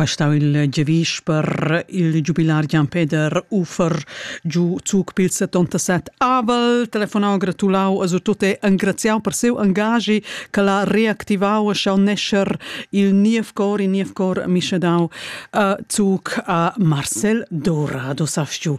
Quai stau il giavisch per il giubilar Gian Peder Uffer giu zuc pil settantasset avel, telefonau, gratulau e surtut engraziau per siu engaschi ch'el ha reactivau e schau nescher il niev cor, il niev cor mischedau zuc a Marcel Dora, do sast giu.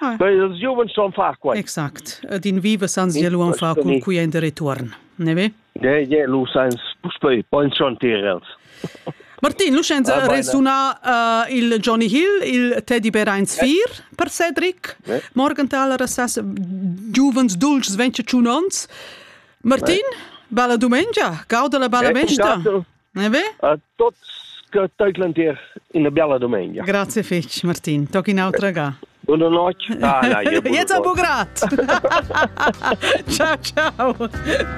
ils giuvens san far quai. Exact. Ed in viva san sia luan far cun cui en de retuorn. Ne ve? Ne, je, lu sans puspei pensiontir els. Martin, lu scienza ah, resuna uh, il Johnny Hill, il Teddy Bear eins vier per Cedric. Ne? Morgenthal rassas giuvens dulcis 25 ons. Martin, bella dumengia, gauda la bella eh, besta. E beh? A tots che teuclan tier una bella domenica. Grazie fetch, Martin. Toc in autra ga. Buona notte. Ah, dai, buona Jetzt a Bugrat. ciao, ciao.